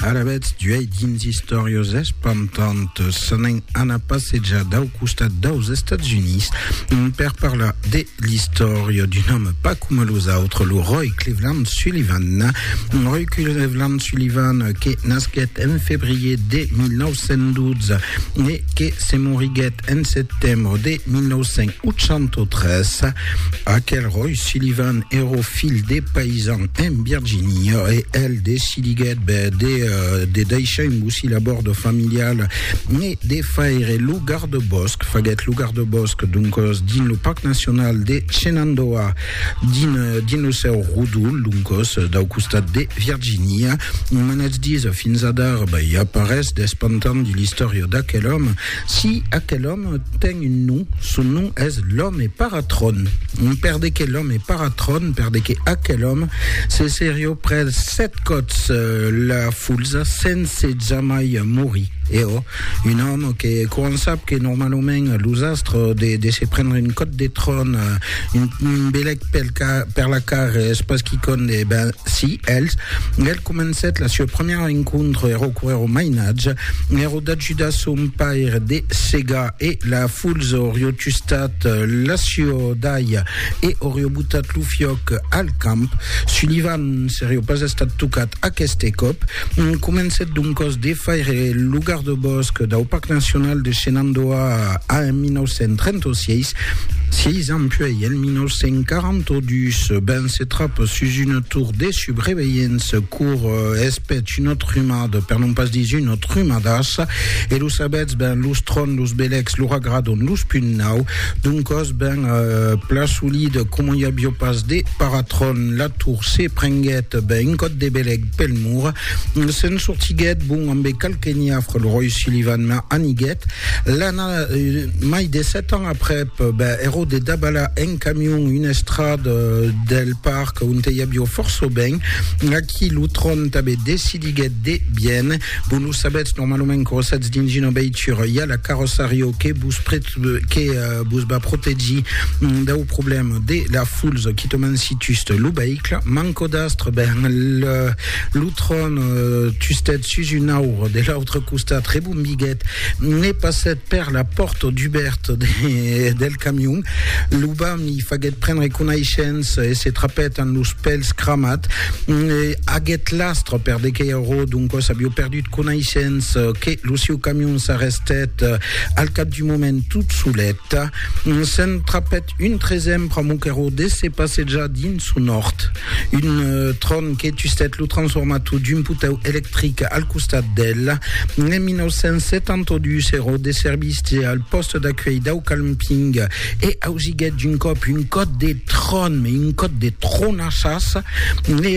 Ara vètz d'uèi dins istòrias espantantas. S'anèn anar passejar dau costat daus Estats Units per parlar de l'istòria d'un òme pas coma los autres, lo Roy Cleveland Sullivan. Roy Cleveland Sullivan que nasquèt en febrier de 1912 e que se moriguèt En setembre de 1983, aquel Roy Sullivan èro filh de paisan en Virginia e el decidiguèt de, de daishar un bocil a bòrd familial e de faire lo gardebòsc, faguèt lo gardebòsc doncòs dins lo Parc Nacional de Shenandoah, dins, dins lo seu rodol doncòs dau costat de Virginia. Manatz dits fins adara, i a pas res d'espantant dins l'istòria d'aquel òme, Si aquel òme ten un nom, son nom es l'òme Paratron. Per de que l'òme Paratron, per de que aquel òme se serió pres sèt còps la fulsa sense jamai morir. E ò, un òme que, quand sap que normalament los astres de de se prendre un còp de tron, un belèc pel ca, per la car es pas quicònd, e ben, si, els, el comencèt la sua premièra encontre, ero coèro mainatge, ero, D'ajudar son paire de segar e la fulz orió tustat l'aciò d'alha e orió botat lo fiòc al camp. Sullivan serió pas estat tocat aqueste còp. Comencèt doncòs de faire lo gardebòsc dau Parc Nacional de Shenandoah en 1936. Sièis ans puèi, en 1942, ben se trap sus una tor de subreveilhença. cor es pech un autre rumad, per non pas dis un autre rumadas, e lo sabetz ben los tròn, los belecs, lo ragradon, los punt nau, d'un còs ben pla solid, coma i avió pas de paratròn, la tour se prenguèt ben un còt de belec pel mur, se'n sortiguèt bon ambe qualque niafre, lo ròi Sullivan la aniguèt, l'an mai de sèt ans aprèp, ben ero de dabalar en camion una estrad del parc, que un te iabio forço ben, aquí lo tron tabe decidiguet de bien, vos lo sabetz normalament que rosatz dins una veitura i a la carrossario que vos que vos va protegir dau problèm de la fulza qui te mansitust lo veicle, manco d'astre, ben le, lo tron tustet sus un aur de l'autre costat, rebombiguet, ne passet per la pòrta dubèrta de, del camion, lo vam li faguèt prendre conaishença e se trapèt amb los pèls cramat, aguèt l'astre per de qué ero, doncòs avió perdut conaishença que lo sieu camion s'arrestèt al cap d'un moment tot solet, se'n trapèt un tresèm pr'amor qu'ero de se passejar dins son òrt, un tron que tustèt lo transformator d'un potèu electric al costat d'el, en 1972 ero de servici al pòste d'acuèlh dau camping, e ausiguèt d'un còp un còt de tròn, me un còt de tronassas, e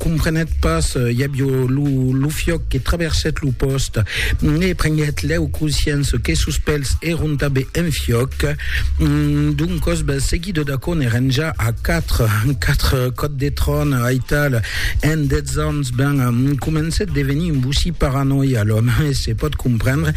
comprenèt pas, i avió lo fiòc que traversèt lo pòst, e prenguèt lèu consciença que sos pèls èron tanben en fiòc, doncòs bèl seguida d'aquò n'èren ja a quatre, quatre còts de tròn, aital, en dètz ans, ben, comencèt devenir un bocí paranòia, l'òme, e se pòt comprendre,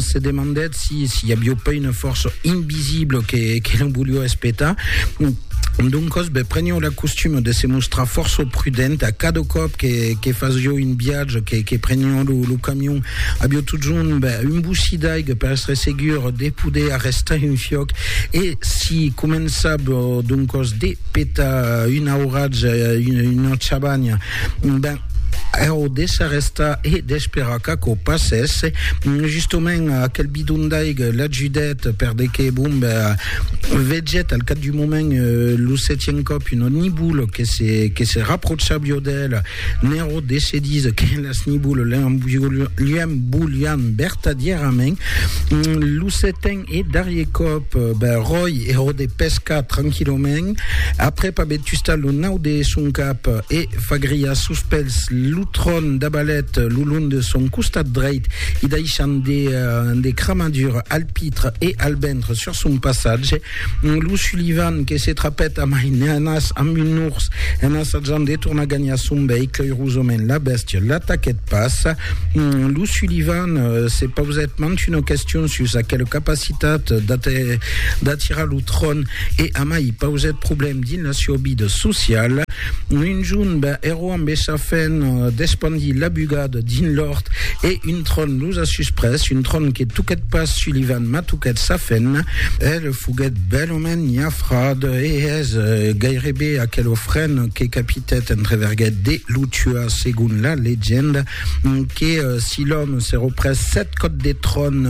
se demandèt Si, si, a bio pas una força invisibla que, que non volió espetar. Doncos, be, prenió la costuma de se mostrar força prudent a cada còp que, que fasió un viatge, que, que prenió lo, lo camion. Avió totjorn be, un bocí d'aiga per estre segur de poder arrestar un fiòc e si començab doncos de petar una auratge, una, una chabanha, ben, Eròdes s'arrèsta e d'esperar qu'aquò passèsse. Justament, aquel bidon d'aiga l'ajudèt perdeque, bon, vegèt al cap d'un moment lo setien còp una nibula que se, que se raprocha viò d'el. N'Eròdes se dís que las nibulas liam volián vertadièrament. Lo seten Eth darrier còp, ben ròi, ero de pescar tranquillament, aprèp aver tustat lo nau de son cap e fagriat sus pels lo tron d'abalet lo long de son costat dreit i daishant de cramadures al pitre e al ventre sur son passatge, lo Sullivan que se trapèt a maineanas amb un urs en assajant de tornar gagnar son veicle, eirosament la bèstia l'ataquèt pas. Lo Sullivan se pausèt mant una question sus aquela capacitat d'atirar lo tron e amai pausèt problèm dins la sieu vida sociala. Un jorn ben ero amb esa fen d'espandir la bugada dins l'òrt e un tron los a susprés, un tron que toquèt pas Sullivan mas toquèt sa fen. El foguèt bèlament niafrat e es gairebe aquela fen que capitèt entreverguèt de lo tuar. segon la legenda, que si l'òme se reprès set còps de tròn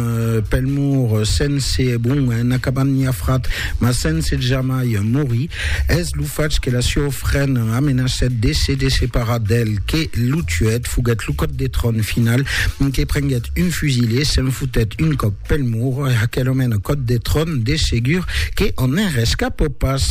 pel mur sense, bon, en acabant ni afrat, mas sense jamai morir, es lo fach que la sieu frèn amenacèt de se desseparar d'el que lo tuèt, foguèt lo còp de tròn final, que prenguèt un fusil e se'n fotèt un còp pel mur, aquel òme còp de tròn de segur que en rescapò pas.